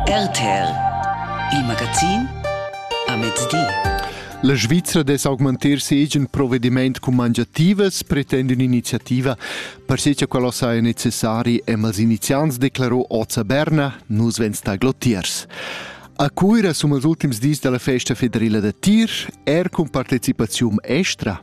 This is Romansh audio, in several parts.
RTR Il magazin a mezdi. La Svizra dess augmentar ses agen provedimaint cun mangiativas pretend un'iniziativa. Per sé che quello saja necessari, hem als iniziants declarò oz a Berna, nus vens taglotiers. A Cuira sono els ultims dis della festa federale da tir, er cun partecipazione estra.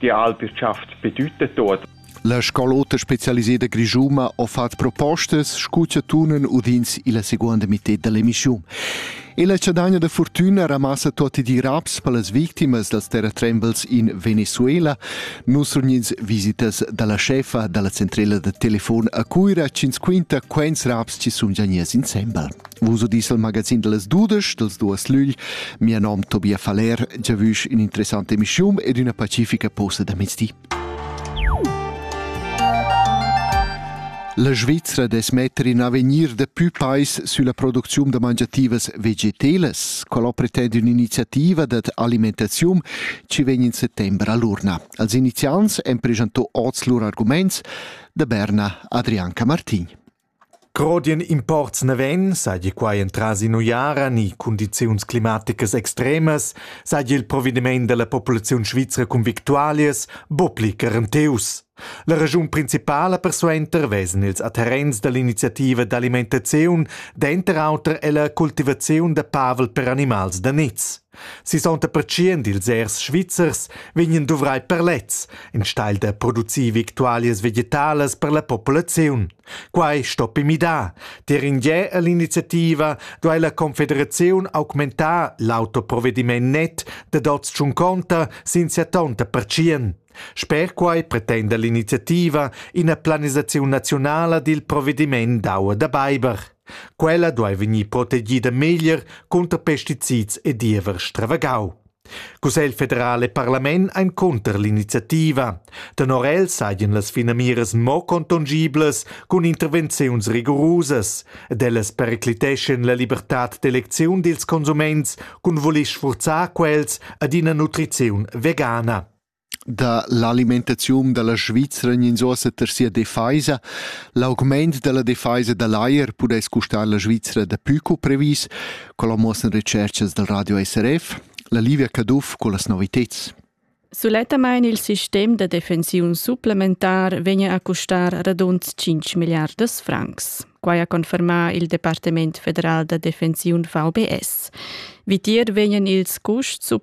Gia alpi rtschafts per tut e tuot. La Scal'ota spezialiseda grischuma ha fatg propostas sco cha tunan udins illa seguonda mità da l'emissiun. E la chadagna da fortüna ramassa tuotti di raps per las victimas dals terratrembels in Venezuela. Nus regnins visitas da la chefa da la centrela da telefon a Cuira chi'ns quinta quaints raps chi sun già gniers insembel. Uso diesel magazin dallas dudesch dals duas lügl. Mia nom Tobia Faller, giavüsch ün'interessanta emischiun ed üna pacifica posta da mezdi. La Svizra dess metter in avegnir da pü pais sülla producziun da mangiativas vegetelas. Quella pretend ün'iniziativa dad alimentaziun chi vegn in settember all'urna. Als iniziants han presentò oz lur arguments da Berna Adrianca Martin. Grodien imports naven, seigi quei entras in'uiara ni cundiziuns climaticas extremas, seigi il provediment dalla populaziun svizra cun victualias buca pli garantius. La regiun principala persuenter vesen ils adherents dall'iniziativa d'alimentaziun denter auter ella cultivaziun da pavel per animals da niz. Sisonta pertschient ils ers svizzers vegnan duvrai per lez, enstagl da producir victualias vegetalas per la populaziun. Quai stoppi midar. Tier in gie all'iniziativa duai la Confederaziun augmentar l'autoprovediment net da dots tschunconta sin sia tonta pertschien. Sper quai pretenda l'iniziativa ina planisaziun naziunala dil provediment d'aua da beiber. Quella duai vegnir protegida meglier cunter pesticids e diever stravagau. Cussegl federal e parlament ein cunter l'iniziativa. Tenor el saien las finamiras mo contongiblas cun intervenziuns rigorusas ed ellas pericliteschen la libertad d'elecziun dils consuments cun voler sfurzar quels ad ina nutriziun vegana. da l'alimentaziun da la Svizra gnins uossa ter sia defaisa. L'augmaint da la defaisa da l'ajer pudess custar la Svizra dapü co previs, co muossan recerchas dal radio SRF. La Livia Caduff con las noviteds. Sulettamain il sistem da defensiun supplementar vegna a custar radund 5 miliardas francs. Quai ha confermà il Departement federal da defensiun VBS. Vitier vegnan ils custs supplementari